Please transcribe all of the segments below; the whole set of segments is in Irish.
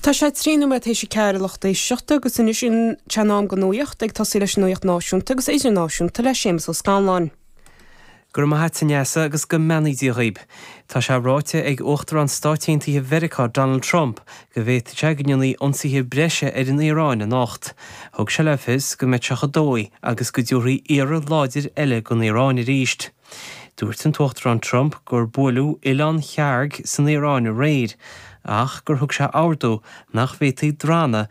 Tá sé trí nóiméad tar éis a ceathair a lucht éisteachta agus anois sin tá in am go nuaíocht ag tosaí leis an nuaíocht náisiúnta agus idirnáisiúnta le Séamus Ó Scanláin. Go raibh maith a't, a Neasa, agus go mbeannaí Dia dhaoib. Tá sé ráite ag Uachtarán Stáit Aontaithe Mheiriceá Donald Trump go bhféadfadh sé go ndéanfaí ionsaithe breise ar an Iaráin anocht. Thug sé le fios go mbeadh sé chomh dóigh agus go dtabharfaí iarraidh láidir eile gon Iaráin aríst. Dúirt an tUachtarán Trump gur buaileadh Oileán Kharg san Iaráin aréir, ach gur thug sé ordú nach bhféadfaí drannadh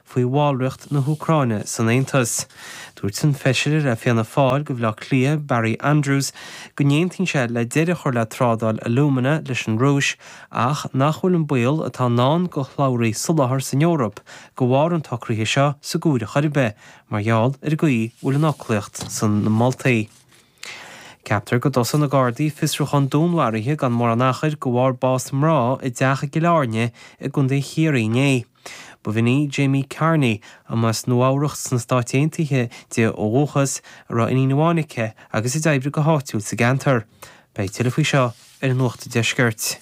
faoi bhallracht na hÚcráine san Aontas. Dúirt an Feisire le Fianna Fáil go Bhaile Átha Cliath, Barry Andrews, go n-aontaíonn sé le deireadh a chur le trádáil alúmana leis an Rúis ach nach bhfuil an baol atá i ndán do shlabhraí soláthair san Eoraip de bharr an tsocraithe seo sa gcomhaireamh chor ar bith mar gheall ar an gcaoi a bhfuil an fhoclaíocht sna moltaí. Ceaptar go dtosóidh na Gardaí fiosrúchán dúnmharaithe gan mórán achair de bharr bás mná i dteach i gCill Airne i gContae Chiarraí inné. Ba bhean í Jamie Carney, a mba as Nua-Eabhrac sna Stáit Aontaithe di ó dhúchas, a raibh iníon amháin aici agus a d'oibrigh go háitiúil sa gceantar. Beidh tuilleadh faoi seo ar an Nuacht Deiscirt.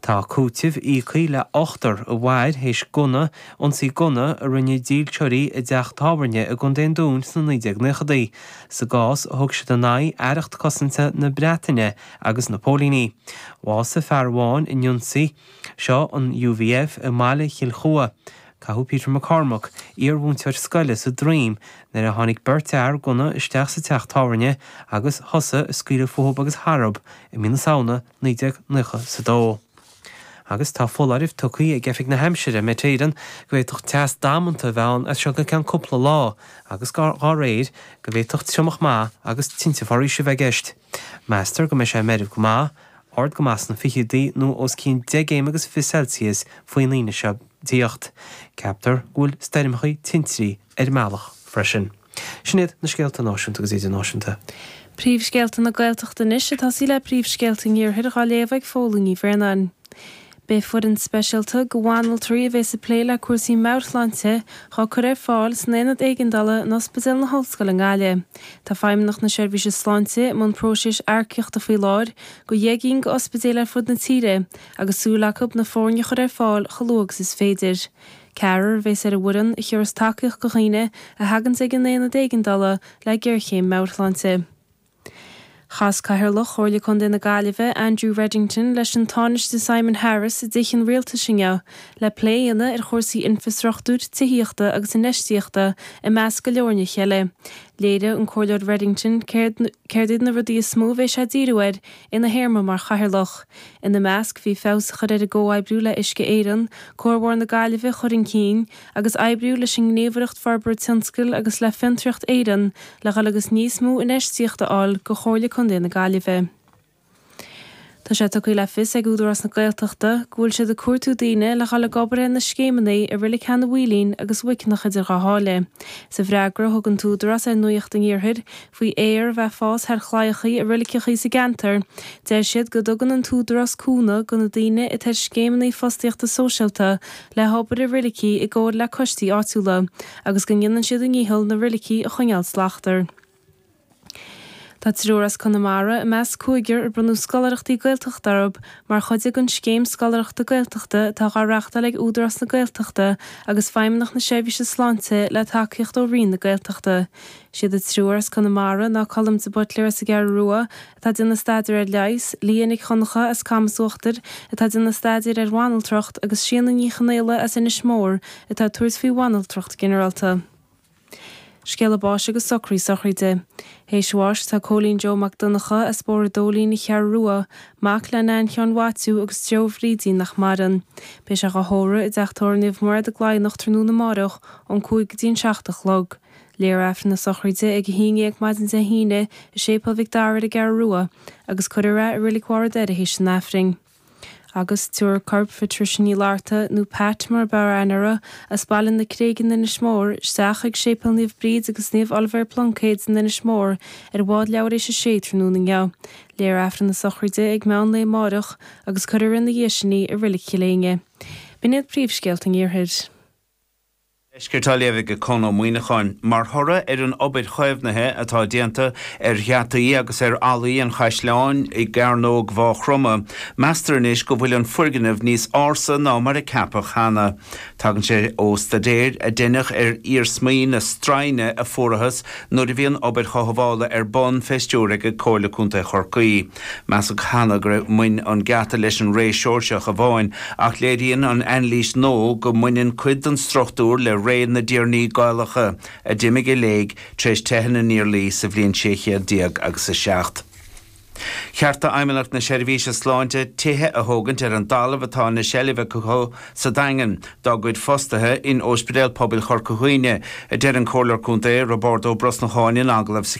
Tá cúiteamh íoctha le hochtar a mhair théis gunna, ionsaí gunna, a rinne dílseoirí i dteach tábhairne i gContae an Dúin sna 1990idí. Sa gcás a thug siad in aghaidh Aireacht Cosanta na Breataine agus na póilíní. Bhásaigh fear amháin in ionsaí seo an UVF i mBaile Chill Chua. Caitheadh Peter McCormack, iar-mhúinteoir scoile, sa droim nuair a tháinig beirt fhear gunna isteach sa teach tábhairne agus thosaigh ag scaoileadh fúthub agus tharthub i mí na Samhna 1990 sa dó. Agus tá foláireamh tugtha ag Oifig na hAimsire, Met Éireann, go bhféadfadh teas damanta a bheith ann as seo go ceann cúpla lá agus, dá réir, go bhféadfadh triomach maith agus tinte foraoise a bheith i gceist. Meastar go mbeidh sé meirbh go maith, ard go maith sna fichidí nó os cionn deich gcéim agus fiche Celsius faoin Aoine seo ag tíocht. Ceaptar go bhfuil stoirmeacha tintrí ar an mbealach freisin. Sin iad na scéalta náisiúnta agus idirnáisiúnta. Príomhscéalta na Gaeltachta anois ag tosaí le príomhscéalta an iarthair dhá léamh ag Póilín Ní Bhraonáin. Beidh foireann speisialta de bhanaltraí a bheas ag plé le cúrsaí meabhairshláinte dhá cur ar fáil san Aonad Éigeandála in Ospidéal na hOllscoile i nGaillimh. Tá Feidhmeannacht na Seirbhíse Sláinte i mbun próiseas earcaíochta faoi láthair go dheich gcinn go ospidéil ar fud na tíre agus súil acu na foirne a chur ar fáil chomh luath agus is féidir. Ceathrar a bheas ar an bhfoireann a thabharfas tacaíocht do dhaoine a thaganns ag an Aonad Éigeandála le géarchéim meabhairshláinte. Chas Cathaoirleach Chomhairle Contae na Gaillimhe, Andrew Reddington, leis an Tánaiste Simon Harris i dTithe an Rialtais inniu le plé a dhéanamh ar chúrsaí infreastruchtúir, tithíochta agus infheistíochta, i measc go leor nithe eile. Léirigh an Comhairleoir Reddington céard iad na rudaí is mó a bheidh sé ag díriú air ina théarma mar chathaoirleach. Ina measc bhí feabhas a chur ar an gcomhoibriú le Uisce Éireann, Cuarbhóthar na Gaillimhe a chur chun cinn, agus oibriú leis an nGníomhaireacht Forbairt Tionscail agus le Fiontraíocht Éireann le dhul agus níos mó infheistíocht a fháil go Chomhairle Contae na Gaillimhe. Tá sé tugtha le fios ag Údarás na Gaeltachta go bhfuil siad ag cuartú daoine le dhul ag obair ar na scéimeannaí i Reilig Sheanadh Mhaoilín agus Muiceanach idir Dhá Sháile. Sa bhfreagra a thug an tÚdarás ar Nuaíocht an Iarthair, faoi fhéar a bheith ag fás thar chlaíochaí i reiligeachaí sa gceantar. Deir siad go dtugann an tÚdarás cúnamh go na daoine atá ar scéimeannaí fostaíochta sóisialta le hobair i reiligí i gcomhar le coistí áitiúla agus go ndéanann siad a ndícheall na reiligí a choinneáil slachtmhar. Tá triúr as Conamara i measc cúigear a bronnadh scoláireachtaí Gaeltachta orthu mar chuid den scéim scoláireachta Gaeltachta atá dhá reachtáil ag Údarás na Gaeltachta agus Feidhmeannacht na Seirbhíse Sláinte le tacaíocht ó Roinn na Gaeltachta. Siad an triúr as Conamara ná Colm de Buitléar as an gCeathrú Rua atá ag déanamh staidéar ar leigheas, Lia Nic Dhonncha as Camas Uachtair atá ag déanamh staidéir ar bhanaltracht agus Síona Ní Chonaola as Inis Mór atá ag tabhairt faoi bhanaltracht ginearálta. Scéala báis agus socraí sochraide. Théis bháis tá Cóilín Joe Mac Donncha as Bóthar an Dóilín an Cheathrú Rua, mac le Nain Sheáin Mhaitiú agus Joe Bhrídín nach maireann. Beidh sé á thórramh i dTeach Tórraimh Naomh Mairéad i gCladhnach tráthnóna amárach ón cúig go dtí an seacht a chlog. Léifear Aifreann na Sochraide ag a haon dhéag maidin Dé hAoine i Séipéal Mhic Dara ar an gCeathrú Rua agus cuirfear é i Reilig Bharr a' Doire théis an Aifrinn. Agus tabharfar corp Phatricia Uí Fhlatharta, nó Pat mar a b'fhearr aithne uirthi, as Baile na Creige in Inis Mór, isteach chuig Séipéal Naomh Bríd agus Naomh Oilibhéar Pluincéad in Inis Mór ar bhád leathuair théis a sé tráthnóna inniu. Léifear Aifreann na Sochraide ag meán lae amáireach agus cuirfear ina dhiaidh sin í i Reilig Chill Éinne. B'in iad príomhscéalta an iarthair. Deisceart á léamh aige Conn Ó Muíneacháin. Mar thoradh ar an obair chaomhnaithe atá déanta ar gheataí agus ar fhallaí an chaisleáin i gCearnóg Mhaigh Chromtha, meastar anois go bhfuil an foirgneamh níos ársa ná mar a ceapadh cheana. Tagann sé ó staidéar a deineadh ar iarsmaí na stroighne a fuarathas nuair a bhí an obair chothabhála ar bun fé stiúir aige Comhairle Contae Chorcaí. Measadh cheana gur bhain an geata leis an ré Seoirseach amháin, ach léiríonn an anailís nua go mbaineann cuid den struchtúr le ré na dtiarnaí Gaelacha, a d'imigh i léig tar éis teitheadh na nIarlaí sa bhliain sé chéad déag agus a seacht. Cheart d'Fheidhmeannacht na Seirbhíse Sláinte tithe a thógaint ar an dtalamh atá ina seilbh acu sa Daingean dá gcuid fostaithe in Óispidéal Pobail Chorca Dhuibhne, a deir an Comhairleoir Contae Roibeárd Ó Brosnacháin in agallamh sa